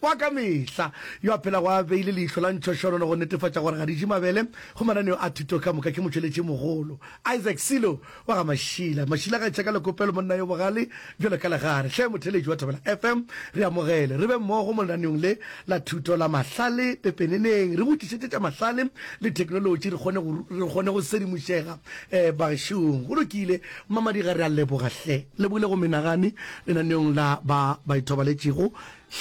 Wa ka mehla, yo a phelago a beile leihlo la ntšhošonono go netefatša gore ga di je mabele go mananeo a thuto ka moka ke motšweletšimogolo Isaac Silo wa ga Mashila. Mashila ga tšheka le kopelo monna yo bogale bjalo ka legare. Hle motheeletši wa Thobela FM, re amogele, re be mmogo mo lenaneong le la thuto la mahlale. Pepeneneng, re botšišetše tša mahlale le theknolotši re kgone go, re kgone go sedimošega eh, bagešong. Go lokile, Mmamadiga, re a leboga hle. Lebogile go menagane lenaneong la ba ba ithobaletšego.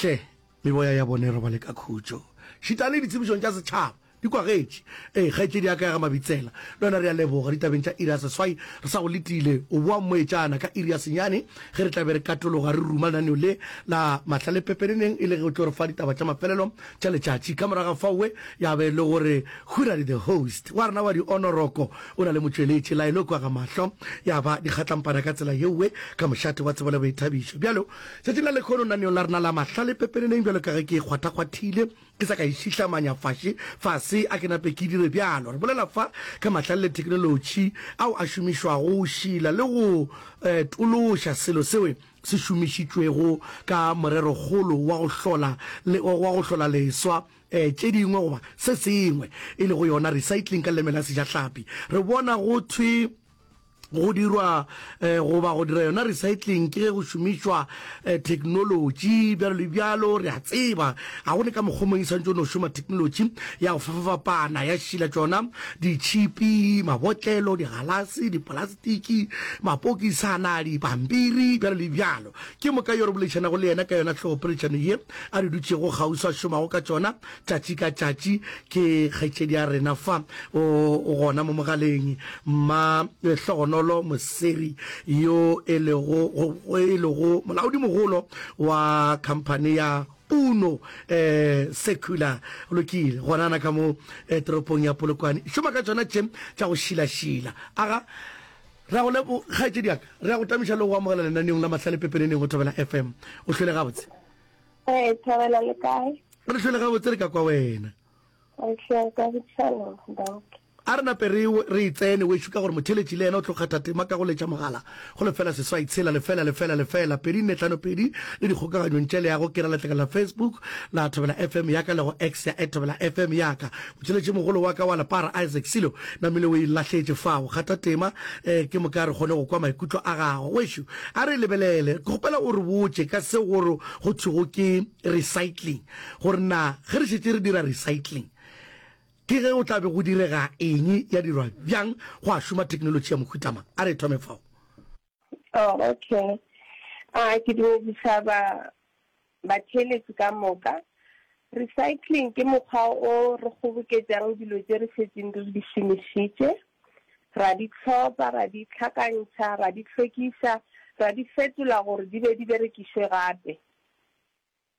Hle, meboya ya bona e robale ka khutšo. Šitane ditsebišong tša setšhaba. Di kwagetše. Ee, kgaetšedi ya ka ya ga Mabitsela. Le wena re a leboga. Ditabeng tša iri ya seswai re sa go letile. O boa mmoetšana ka iri ya senyane ge re tla be re katologa re ruma lenaneo le la mahlale pepeneneng e le ge o tlo re fa ditaba tša mafelelo tša letšatši. Ka morago ga faowe ya be e le gore Huradi the host wa rena wa dionoroko o na le motšweletši Laelokwa Gamahlo ya ba dikgatlampana ka tsela yeowe ka mošate wa tsebo le boithabišo. Bjalo Tšatšing la lekhono naneong la rena la mahlale pepeneneng, bjalo ka ge ke e kgwathakgwathile, ke sa ka e šihlamanya faše fase, a ke nape ke dire bjalo. Re bolela fa ka mahlale le theknolotši ao a šomišwago go šila le go tološa selo seo se šomišitšwego ka morerokgolo wa go hlola le wa go hlola leswa tše dingwe goba se sengwe, e lego yona recycling ka leleme la Sejahlapi. Re bona go thwe. Go dirwa goba go dira yona recycling ke ge go šomišwa theknolotši bjalo le bjalo. Re a tseba ga go ne ka mokgwa mong e santšo no šoma theknolotši ya go fapafapana ya šila tšona ditšhipi, mabotlelo, digalase, dipolastiki, mapokisana, dipampiri bjalo le bjalo. Ke moka yo re boledišanago le yena ka yona hlogopoledišano ye a re dutšego kgauswi a šomago ka tšona Tšatši ka tšatši ke kgaetšedi ya rena fa o gona mo mogaleng, Mma Hlogonolo Moseri yo e lego e lego molaodimogolo wa khamphane ya Uno Secular lokile gonana ka mo toropong ya Polokwane e šoma ka tšona tše tša go šilašila. Aga re a go lebo kgaetšedi ya ka, re a go tamiša le go amogela lenaneong la Mahlale pepeneneng go Thobela FM. O hlwele gabotse. Ee, Thobela le kae? Re re hlole gabotse re ka kwa wena. Re hlole ka botshelo, Doc. A re nape re re e tsene wešo ka gore motheletši le yena o tlo kgatha tema ka go letša mogala go lefela seswai tshela lefela lefela lefela pedi nne tlhano pedi le dikgokaganyong tše le ya go kera letlakala la Facebook la Thobela FM ya ka le go X ya @thobela FM ya ka. Motheletši mogolo wa ka wa lepara Isaac Silo namile o e lahletše fao. Kgatha tema eh, ke moka re kgone go kwa maikutlo a gago wešo. A re lebelele, ke kgopela o re botše ka seo go go thwego ke recycling, gore na ge re šetše re dira recycling ke ge go tla be go direga eng, ya dirwa bjang, go a šoma theknolotši ya mohuta mang. A re thome fao. Oh, okay. A ke dumedisa ba. Batheeletši ka moka. Recycling ke mokgwa o re kgoboketšang dilo tše re šetšeng re di šomišitše, ra di tlhopha, ra di hlakantšha, ra di hlwekiša, ra di fetola gore di be di berekišwe gape.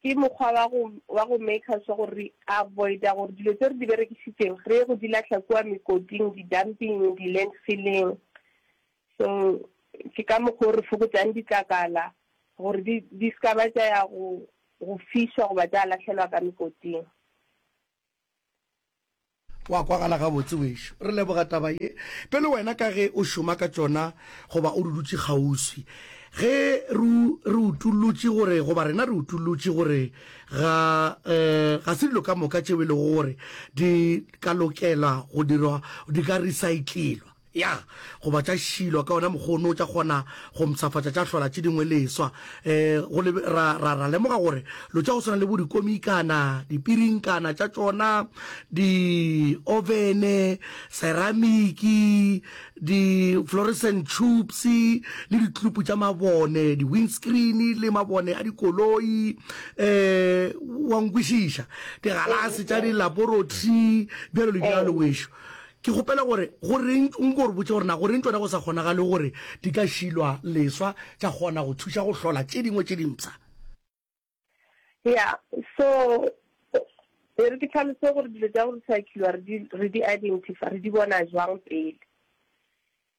Ke mokgwa wa go wa go maker sure gore re avoida gore dilo tše re di berekišitšeng re ye go di lahla kua mekoting, di-dumping, di-landfilling. So, ke ka mokgwa o re fokotšang ditlakala gore di, di se ka ba tša ya go, go fišwa goba tša lahlelwa ka mekoting. Go a kwagala gabotse, wešu. Re leboga taba ye. Pele wena ka ge o šoma ka tšona goba o re dutše kgauswi, ge re, re utullotše gore, goba rena re utullotše gore ga, uh, ga se dilo ka moka tšeo e lego gore di ka lokela go dirwa, di ka recyclelwa. Ya, goba tša Shilo, ka wona mokgwa ono, tša kgona go mpshafatša, tša hlola tše dingwe leswa. E, go le, ra, ra, ra lemoga gore lo tša go swana le bo dikomikana, dipirinkana tša tšona, di-ovene, seramiki, di-fluorescent tubes, le ditlupu tša mabone, di-windscreen, le mabone a dikoloi, e, wa nkwešiša, digalase tša dilaborotri, bjalo le bjalo, wešo. Ke kgopela gore goreng o nko re botše gore na goreng tšona go sa kgonagale gore di ka šilwa leswa tša kgona go thuša go hlola tše dingwe tše dimpsha. Ya, so e re ke tlhalose gore dilo tša go recycliwa re di identify, re di bona jwang pele.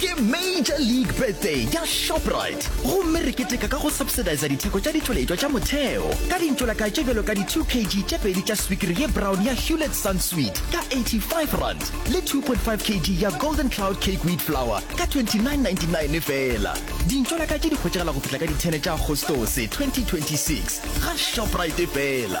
Ke Major League Birthday ya Shoprite gomme re keteka ka go subsidiza ditheko tša ditšweletšwa tša motheo ka dintšolaka tše bjalo ka di 2 kg tše pedi tša swikiri ye brown ya Hewlett Sun Sweet ka R85 le 2.5 kg ya Golden Cloud Cake Wheat Flour ka R29.99 feela. Dintšolaka tše di hwetšagala go fihla ka di 10 tša Agostose 2026 ga Shoprite feela.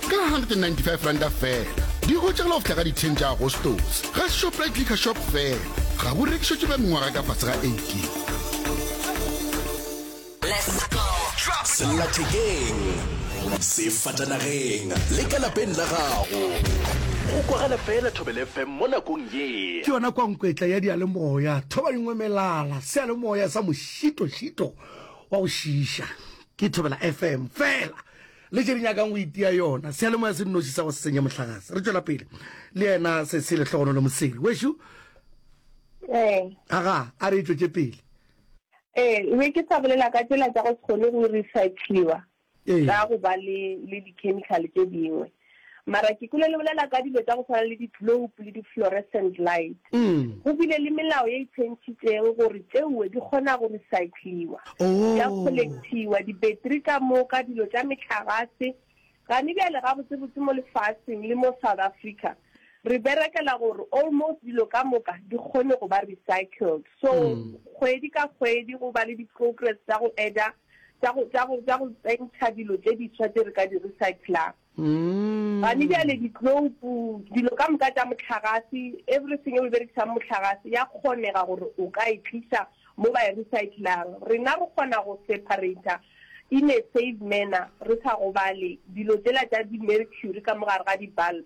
ka R195 fela. Di hwetšagala go fihla ka di 10 tša Agostose ga Shoprite Liquor Shop fela. Ga bo rekišetšwe ba mengwaga ka fase ga 18. Sellathekeng, sefatanageng le ka lapeng la gago, go kwagala fela Thobela FM mo nakong ye. Ke yona kwankwetla ya diyalemoya, thoba dingwe melala, seyalemoya sa mošito-šito wa go šiiša. Ke Thobela FM fela. le tše di nyakang go itia yona seyalemoya se nnoši sa go se senye mohlagase re tšwela pele le yena se se lehlogono le mosele wešo ee aga a re e tšwetše pele ee e be ke sa bolela ka tsela tsa go se kgone go recycliwa ka go ba le le di-chemical tše dingwe Mara ke kwele le bolela ka dilo tša go swana le di-globe le di-fluorescent light. Go bile le melao ye e tšhentšhitšeng gore tšeuwe di kgona go recycliwa, tša collectiwa, di-battery ka moka, dilo tša mehlagase. Gane bjale gabotsebotse mo lefaseng le mo South Africa re berekela gore almost dilo ka moka di kgone go ba recycled. So kgwedi ka kgwedi go ba le di-progress tša go add-a, tša go, tša go, tša go tsentšha dilo tše diswa tše re ka di recyclang. Gane bjale ditloupu, dilo ka moka tša mohlagase, everything eo e berekisang mohlagase, ya kgonega gore o ka e tliša mo ba e recyclang. Rena re kgona go separator in a safe manner re sa gobale dilo tšela tša di-mercury ka mo gare ga di-bulb.